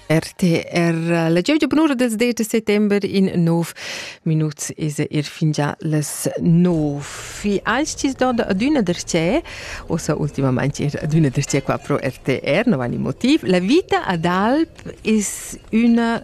RTR la gievgia bunura dels 10 de settember in nov minuts is er fingià les nov. Fi als tis do adüna der ce, ossa ultimament er adüna der ce qua pro RTR, no vani motiv. La vita ad alp is üna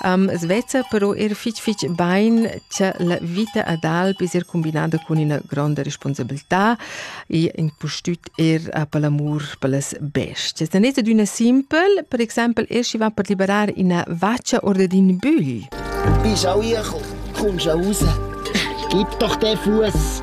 Um, sveza però er fich fich bain cha la vita ad alp es er cumbinada cun üna gronda responsabiltà e impustüt er uh, per l'amur per las bestias. La netta d'üna simpel, per exaimpel er schi va per liberar üna vaccia oder d'ün bügl. Bist auch hier, komm schon raus. Gib doch den Fuß.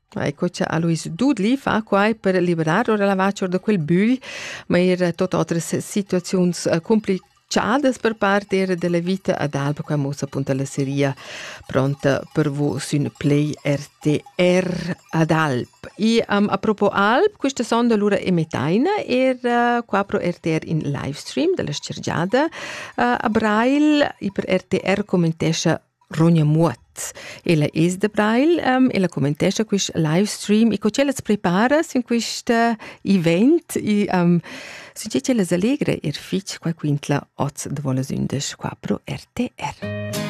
Ecco, c'è Alois Dudli fa qua per liberar ora la vaccior da quel bugl, ma er tot otras situaziuns eh, complicadas per parte era della vita ad Alba, qua mossa appunto la seria pronta per vos un play RTR ad Alp. E um, a propo Alp, questa sonda allora emetaina era eh, qua pro RTR in livestream della scergiada uh, a Brail e per RTR commentescia Ronja Muoth. Ella es da Breil, um, ella commentescha quist live stream e co ch'ellas prepara sin quist event e um, sun che ch'ellas allegra er fich qua quintla oz da vola sündas 4 RTR.